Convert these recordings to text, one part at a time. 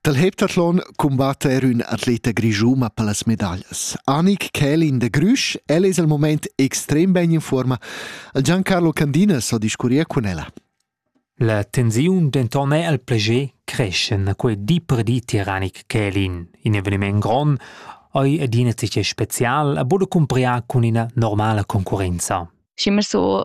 Dal heptathlon cumbatta er ün atleta grischuma per las medaglias. Anik Kälin de Grüsch, el es al moment extrem ben in forma. Il Giancarlo Candinas ho discurrier cun ella. La tensiun denton è al plager creschen quei di per di Tiranik Kälin, in eveniment grond, ei adina tge special a bude cumpriar cun ina normala concurenza. Schimmer so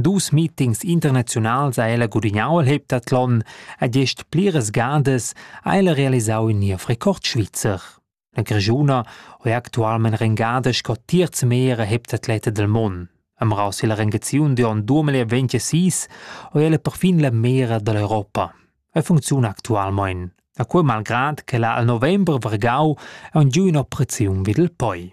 Dus meetings internaziunals ha ella gudignau el heptathlon e gest pliras gadas ha ella realisau in niev record svizzer. La Grischuna ho è actualmein rengada sco terz meira heptatleta del mon. Am raus illa rengaziun di on 2026 ho ella perfin la meira dall'Europa. E funcziuna actualmein. A quei malgrad che la al november vargau ha giu ina operaziun vid il poi.